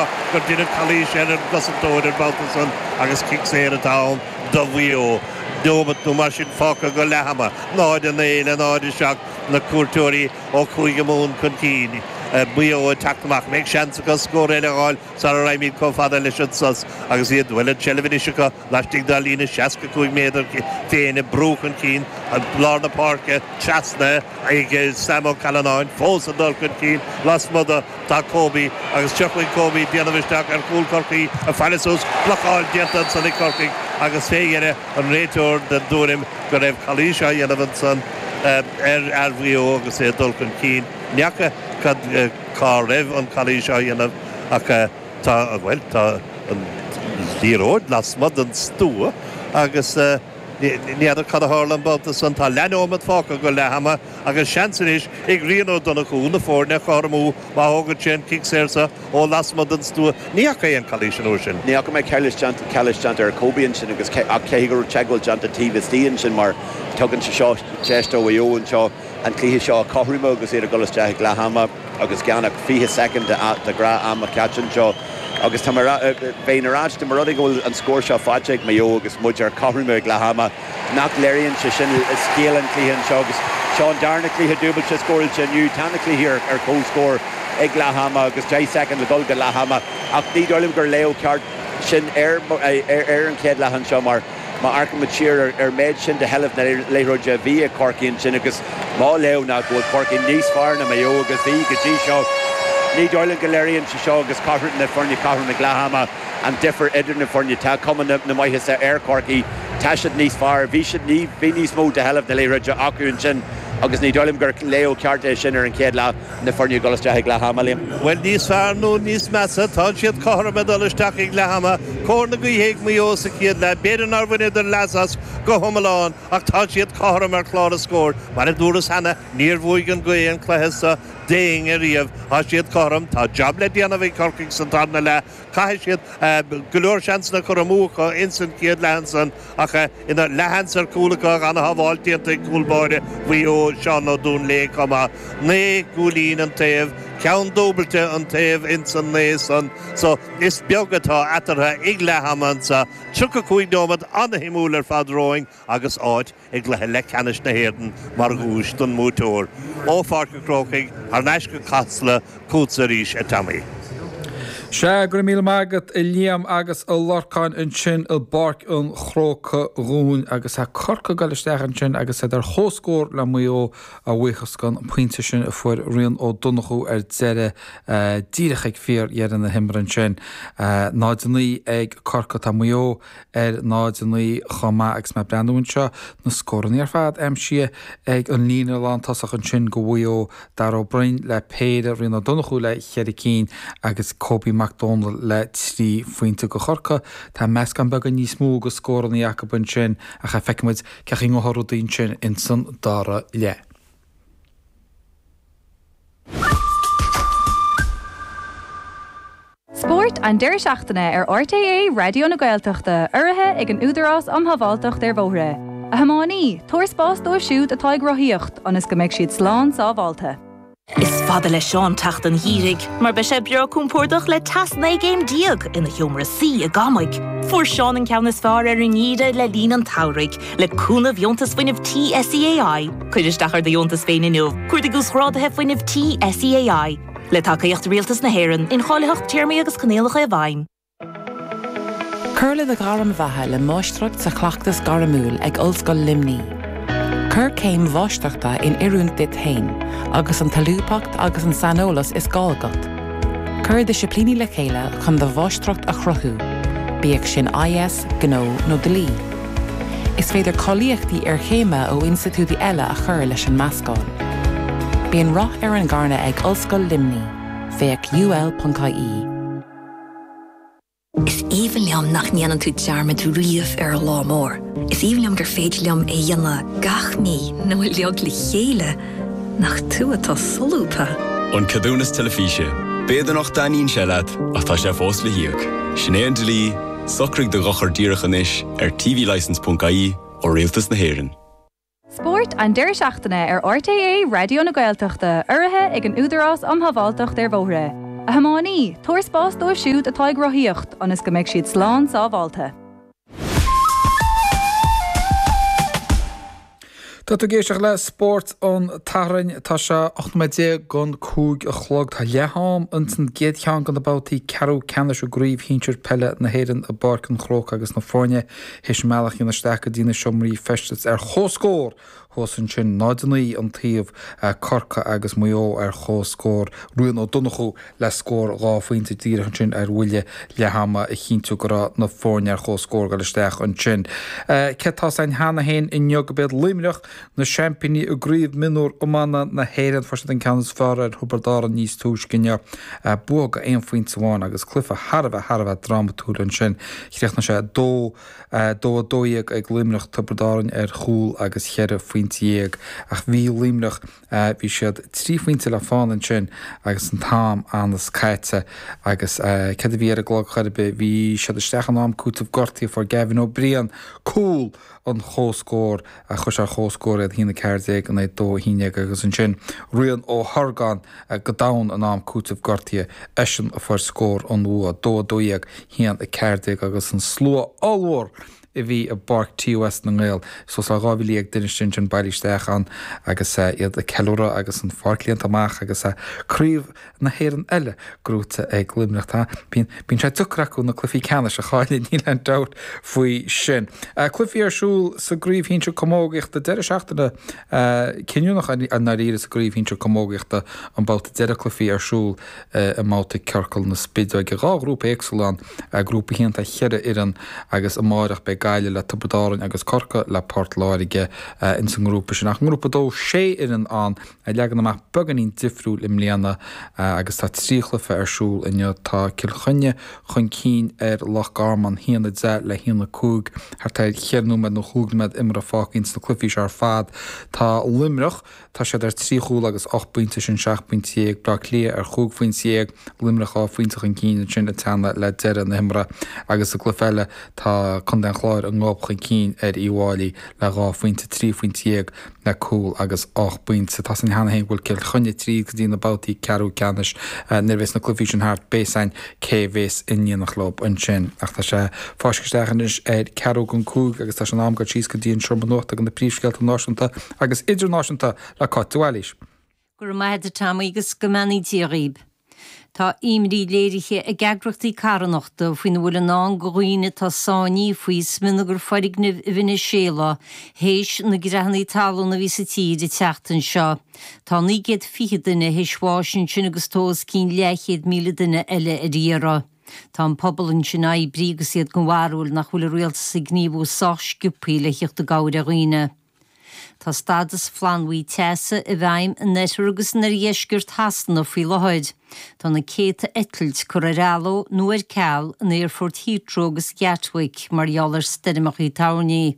ach gur deineadh calaois ar an gcosantóir an babhta san agus cic saor atá ann do Mhaigh Eo. Neomat nó mar sin fágtha go leathama, 0-9 le 0-7, na cuairteoirí ó Chúige Mumhan chun cinn, Maigh Eo ag teacht amach. Bheadh seans acu scór eile a fháil sara raghaimid chomh fada leis an sos agus iad bhuel an tseilbh anois acu. Laistigh dá líne 65 méadar féin, ag brú chun cinn lár na páirce trasna ag Sam Ó Callanáin, fós ag dul chun cinn lasmuigh de, tá Kobe agus tiocfaidh Kobe ag déanamh isteach ar chúl Chorcaí ag faire suas, blocáil déanta ansan ag Corcaigh agus fé dheireadh an réiteoir den dtuairim go raibh calaois á dhéanamh ansan ar fhear Mhaigh Eo agus é ag dul chun cinn. N'fheaca cá raibh an chalaois á dhéanamh ach. Tá, bhuel, tá an liathróid lasmuigh den stua agus ní fheadar cad a tharla an babhta san. Tá leath-neomat fágtha acu, leathama, agus seans anois ag Rian Ó Donnchú na foirne a chothromú má thógann sé an cic saor seo ó lasmuigh den stua. Ní fhaca aon calaois an uair sin. Ní fhaca mé calaois déanta ar Kobe ansin agus ach caithfidh go raibh teagmháil déanta taobh istigh ansin mar tugann sé seo deis do Mhaigh Eo anseo, an cluiche seo a chothromú agus iad ag dul isteach ag leath ama agus gan ach 20 soicind de ghnáth-am caite anseo agus tá mé bheinn ar ais dá mba rud é go bhfuil an scór seo faighte ag Maigh Eo agus muid ar cothrom ag leath ama nach léiríonn sé sin scéal an chluiche anseo agus seo an darna cluiche dúbailte scóráilte inniu tá na cluichí ar ar comhscór ag leath ama agus 10 soicind le dul go leath ama ach ní dóigh liom gur léiriú ceart sin ar ar ar an chéad leath anseo mar Má amharcaimid siar ar an méid sin de sheilbh na liathróide a bhí ag Corcaigh ansin agus mar léiriú ná go bhfuil Corcaigh níos fearr ná Maigh Eo agus bhí go dtí seo, ní dóigh liom go léiríonn sé seo agus cothrom na foirne, cothrom ag leath ama, an difear idir na foirne. Tá cuma na maitheasa ar Chorcaigh, tá siad níos fearr, bhí siad ní, bhí níos mó de sheilbh na liathróide acu ansin agus ní dóigh liom gur léiriú ceart é sin ar an chéad leath. na foirne ag dul isteach ag leath ama liom. Bhuel, níos fearr nó níos measa, tá siad cothrom ag dul isteach ag leath ama, cóir na gaoithe ag Maigh Eo sa chéad leath, b'fhéidir nár bhaineadar leas as go hiomlán, ach tá siad cothrom ar chlár na scór. Mar a dúras cheana, níor bhuaigh an ghaoth an cluiche seo d'éinne riamh, tá siad cothrom, tá jab le déanamh ag Corcaigh sa tarna leath, Chaith siad go leor seansanna curtha amú acu ins an chéad leath ansan ach ina leathshans ar chúl acu, an-shábháil déanta ag cúl báire Mhaigh Eo, Seán Ó Duinnshléibhe, chomh maith. Naoi gcúilín an taobh, ceann dúbailte an taobh ins an naoi san so is beag atá eatartha ag leathama anso. Tríocha cúig nóiméad an-shuimiúil ar fad romhainn agus áit. i gcluiche leathcheannais na hÉireann mar dhuais don mbuaiteoir, ó Pháirc an Chrócaigh thar n-ais go Casla chugatsa arís, a Tommy. Sea, go raibh míle maith agat, a Liam, agus a Lorcáin ansin i bPáirc an Chrócaigh dhúinn, agus tá Corcaigh ag goil isteach ansin agus iad ar chomhscór le Maigh Eo, a bhuíochas don phointe sin a fuair Rian Ó Donnchú ar deireadh, díreach ag fíordheireadh na himeartha ansin. 0, 9 ag Corcaigh, tá Maigh Eo. ar 0-9 chomh maith agus mé ag breathnú anseo, na scóranna ar fad aimsithe ag an líne lántosach ansin do Mhaigh Eo, Darragh Ó Broin le péire, Rian Ó Donnchú le cheithre cinn agus Coby Mac Dónaill le trí phointe do Chorcaigh. Tá meascán beagán níos mó de scóranna acu ansin ach feicfimid cén chaoi a ngabhfaidh rudaí ansin ins an dara leath. Spórt an deireadh seachtaine ar RTÉ Raidió na Gaeltachta, urraithe ag an Údarás um Shábháilteacht ar Bhóithre. A thiománaí, tabhair spás dóibh siúd atá ag rothaíocht ionas go mbeidh siad slán sábháilte. Is fada le Seán teacht an gheimhridh mar beidh sé breá compordach le teas 19 gcéim déag ina sheomra suí i gCamaigh. Fuair Seán an ceann is fearr ar an ngeimhreadh le linn an tsamhraidh, le cúnamh Dheontas Fuinnimh Tí SEAI. Cuir isteach ar do dheontas féin inniu! Cuardaigh Uasghráduithe Fuinnimh Tí SEAI. Le tacaíocht Rialtas na hÉireann, Incháilitheacht Téarmaí agus Coinníollacha i bhfeidhm. Cuir le do Ghairm Bheatha le Máistreacht sa Chleachtas Gairmiúil ag Ollscoil Luimní. Cuir céim Mháistreachta in oiriúint duit féin agus an tsolúbthacht agus an saineolas is gá agat. Cuir disciplíní le chéile chun do mháistreacht a chruthú, bíodh sin IS, Gnó nó Dlí. Is féidir cáilíochtaí iarchéime ó institiúidí eile a chur leis an meascán. Bíonn rath ar an eagna ag Ollscoil Luimní, féach ul.ie. Is aoibhinn liom nach ndéanann tú dearmad riamh ar an Lá Mór. Is aoibhinn liom gur féidir liom é dhéanamh gach mí nó uilig le chéile nach tú atá solúbtha. An ceadúnas teilifíse. B'fhéidir nach dtaitníonn sé leat ach tá sé fós le n-íoc. Sin é an dlí. Socraigh do dhochar díreach anois ar tvlicence.ie ó Rialtas na hÉireann. Spórt an deireadh seachtaine ar RTÉ Raidió na Gaeltachta, urraithe ag an Údarás Um Shábháilteacht ar Bhóithre. A thiománaí, tabhair spás dóibh siúd atá ag rothaíocht ionas go mbeidh siad slán sábháilte. Tá tú ag éisteacht le Spórt an tSathairn. Tá sé ocht nóiméad déag don cúig a chlog. Tá leath-am ins an gcéad cheann de na babhtaí ceathrú ceannais i gCraobh Shinsir Peile na hÉireann i bPáirc an Chrócaigh agus na foirne théis a mbealach a dhéanamh isteach go dtí na seomraí feistis ar chomhscór thuas ansin, 0-9 an taobh, Corcaigh agus Maigh Eo ar chomhscór. Rian Ó Donnchú. le scór dhá phointe díreach ansin ar bhuille leath ama a chinntiú go raibh na foirne ar chomhscór ag dul isteach ansin. Sea, tá a fhios againn cheana féin inniu gurb iad Luimneach na seaimpíní i gCraobh Mionúr Iomána na hÉireann. Fuair siad an ceann is fearr ar Thiobraid Árann níos túisce inniu, bua d'aon phointe amháin agus cluiche thar a bheith thar a bheith drámatúil ansin. Chríochnaigh sé 2 12 ag Luimneach Tiobraid Árainn ar chúl agus cheithre phointe dhéag ach bhí Luimneach. Bhí siad trí phointe le fána ansin agus an t-am ionann's caite agus céard a bhí ar an gclog chor ar bith, bhí siad isteach in am cúiteamh gortaithe, fuair Gavin Ó Briain cúl an chomhscóir, chuir sé ar chomhscór iad, a haon a ceathair déag in aghaidh a dó a haon déag, agus ansin Rian Ó hOrgáin go domhain in am cúiteamh gortaithe, eisean a fuair scór an bhua, dó a dó dhéag, haon a ceathair déag agus an slua ollmhór a bhí i bPáirc TUS na nGael. Suas le 12,000 duine istigh ansin, bailithe isteach ann agus iad ag ceiliúradh agus an pháirc líonta amach agus Craobh na hÉireann eile gnóite ag Luimneach. Tá. Bíonn. Bíonn sé deacair acu na cluichí ceannais a chailleadh, níl aon dabht faoi sin. Cluichí ar siúl sa gCraobh Shinsir Camógaíochta, deireadh seachtaine cinniúnach i ndáiríre sa gCraobh Shinsir Camógaíochta an babhta deireadh cluichí ar siúl i mbabhta ciorcal na spideoige. Dhá ghrúpa éagsúla ann. a grúpa a haon tá cheithre fhoireann agus amáireach beidh Gaillimh le Tiobraid Árainn agus Corcaigh le Port Láirge ins an ngrúpa sin. Ach ngrúpa dó sé fhoireann ann a leagan amach beagáinín difriúil i mbliana agus tá trí chluiche ar siúl inniu. Tá Cill Chainnigh chun cinn ar Loch Garman haon a deich le haon a cúig thart ar cheithre nóiméad nó chúig nóiméad imeartha fágtha ins na cluichí seo ar fad. Tá Luimneach. Tá siad ar trí chúl agus ocht bpointe, sin seacht bpointe dhéag, Bleá Cliath ar chúig phointe dhéag, Luimneach dhá phointe chun cinn ansin ag teannadh le deireadh na himeartha agus sa gcluiche eile tá contae an Chláir an gob chun cinn ar Uíbh Fhailí le dhá phointe, trí phointe dhéag le cúl agus ocht bpointe. Tá a fhios againn cheana féin go bhfuil Cill Chainnigh tríd go dtí na babhtaí ceathrú ceannais. Nuair a bhéas na cluichí sin thart beidh a fhios againn cé a bhéas i ndiaidh na cloch ansin. Ach tá sé fáiscthe isteach anois ar ceathrú gan cúig agus tá sé in am dul síos go dtí an seomra nuachta go na príomhscéalta náisiúnta. agus idirnáisiúnta le Cáit de Bhailís. Go raibh maith agat Tom agus go mbeannaí Dia dhaoibh. Tá imní léirithe ag eagrachtaí carthanachta faoina bhfuil i ndán do dhaoine atá sáinnithe faoi smionagar foirgnimh i Veiniséala théis na creathannaí talún a bhí sa tír an tseachtain seo. Tá 920 duine théis bháis ansin agus tá os cionn leathchéad míle duine eile ar iarraidh. Tá an pobal ansin ar oibriú agus iad den bharúil nach bhfuil a rialtas ag gníomhú sách sciobthaí le thíocht i gcabhair ar dhaoine. Tá stádas flannbhuí teasa i bhfeidhm in oirthear agus in oirdheisceart Shasana faoi láthair. Tá na céadta eitilt curtha ar athló nó ar ceal in aerfoirt Heathrow agus Gatwick mar gheall ar stoirmeacha toirní.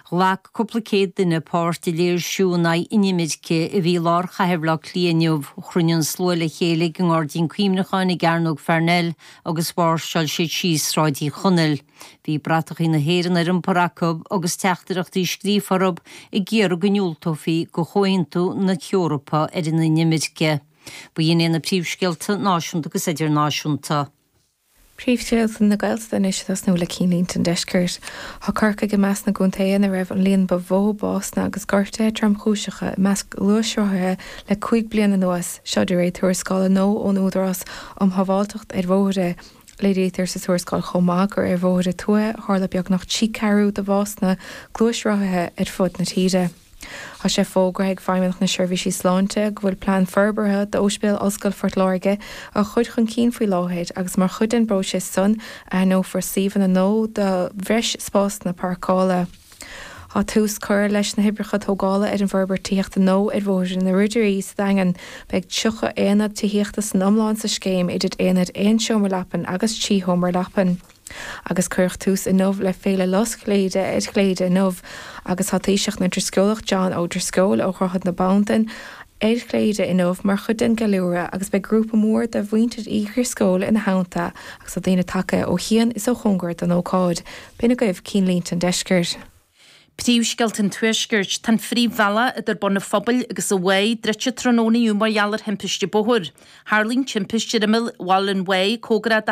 Ghlac cúpla céad duine páirt i léirsiú in aghaidh inimirce a bhí i lár chathair Bhaile Átha Cliath inniu. Chruinnigh an slua le chéile ag an ngairdín cuimhneacháin i gCearnóg Pharnell agus mháirseáil siad síos Sráid Uí Chonaill. Bhí bratachaí na hÉireann ar iompar acu agus teachtaireachtaí scríofa orthu ag iarraidh go ndiúltófaí do Chomhaontú na hEorpa ar an Inimirce. Ba shin é na príomhscéalta náisiúnta agus idirnáisiúnta. Príomhscéalta na Gaeltachta anois ag tosnú le cinnlínte an Deiscirt. Tá Corcaigh i measc na gcontaetha ina raibh an líon ba mhó básanna agus gortuithe tromchúiseacha i measc gluaisrothaithe le cúig bliana anuas, seo de réir tuarascála nua ón Údarás um Shábháilteacht ar Bhóithre. Léirítear sa tuarascáil chomh maith gur ar bhóithre tuaithe a tharla beagnach trí ceathrú de bhásanna gluaisrothaithe ar fud na tíre. Tá sé fógartha ag Feidhmeannacht na Seirbhísí Sláinte go bhfuil plean forbartha d'Óispidéal Ollscoil Phort Láirge á chur chun cinn faoi láthair agus mar chuid den bpróiseas san aithneofar suíomhanna nua do bhreis spásanna páirceála Tá tús curtha leis na hoibreacha tógála ar an bhforbairt tithíochta nua ar Bhóthar na nGrúdairí sa Daingean. Beidh 30 aonad tithíochta san iomlán sa scéim, idir aonaid aon seomra leapan agus trí sheomra leapan. Agus cuireadh tús inniu le Féile Lus Chléire ar Chléire inniu agus tá Taoiseach na nDrisceolach John Ó Drisceoil ó Dhroichead na Bandan ar Chléire inniu mar chuid den gceiliúradh agus beidh grúpa mór de mhuintir Uí Dhrisceoil ina theannta agus tá daoine tagtha ó chian is ó chóngar don ócáid. B'in agaibh cinnlínte an deiscirt. Príomhscéalta an tuaiscirt. Tá an phríomhbhealach idir Bun an Phobail agus an Mhaigh druidte tráthnóna inniu mar gheall ar thimpiste bóthair. Tharla an timpiste ar imeall Bhaile an Mhaigh, cóngarach do